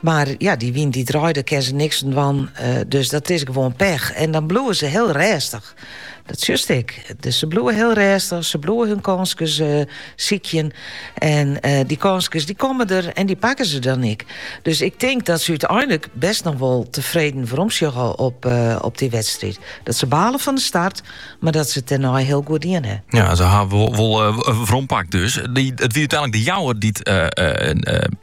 Mar ja, dy wyn dy draait, dêr kin se niks oan dwaan. Dus dat is gewoan pech. En dan bliuwe se hiel rêstich. Dat sjochst ek. Dus se bliuwe hiel rêstich. Se bliuwe hun kânskes uh, sykjen. En uh, dy kânskes dy komme der en dy pakke se dan ek. Dus ik tink dat se úteinlik bêst noch wol tefreden weromsjogge op, uh, op dy wedstriid. Dat se bale fan de start, mar dat se it dêrnei hiel goed dien ha. Ja, se ha wol, wol uh, werompakt. Dus, it wie úteinlik De Jouwer dy't uh,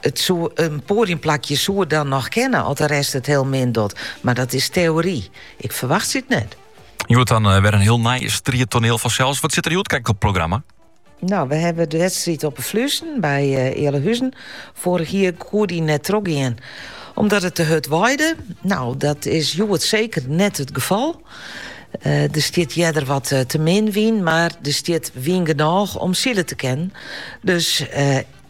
It soe in poadiumplakje soe dan noch kinne as de rest it hiel min docht, mar dat is teory. Ik ferwachtsje it net. Hjoed dan eh, wer in hiel nij striettoneel fansels. Wat stiet der hjoed krekt op it programma? Nou, wy ha de wedstriid op de Fluezen by uh, eh, Ealahuzen. Foarich jier koe dy net trochgean omdat it te hurd waaide. Nou, dat is hjoed seker net it gefal. Uh, eh, der stiet earder wat eh, te min wyn, mar der stiet wyn genôch om sile te kinnen. Dus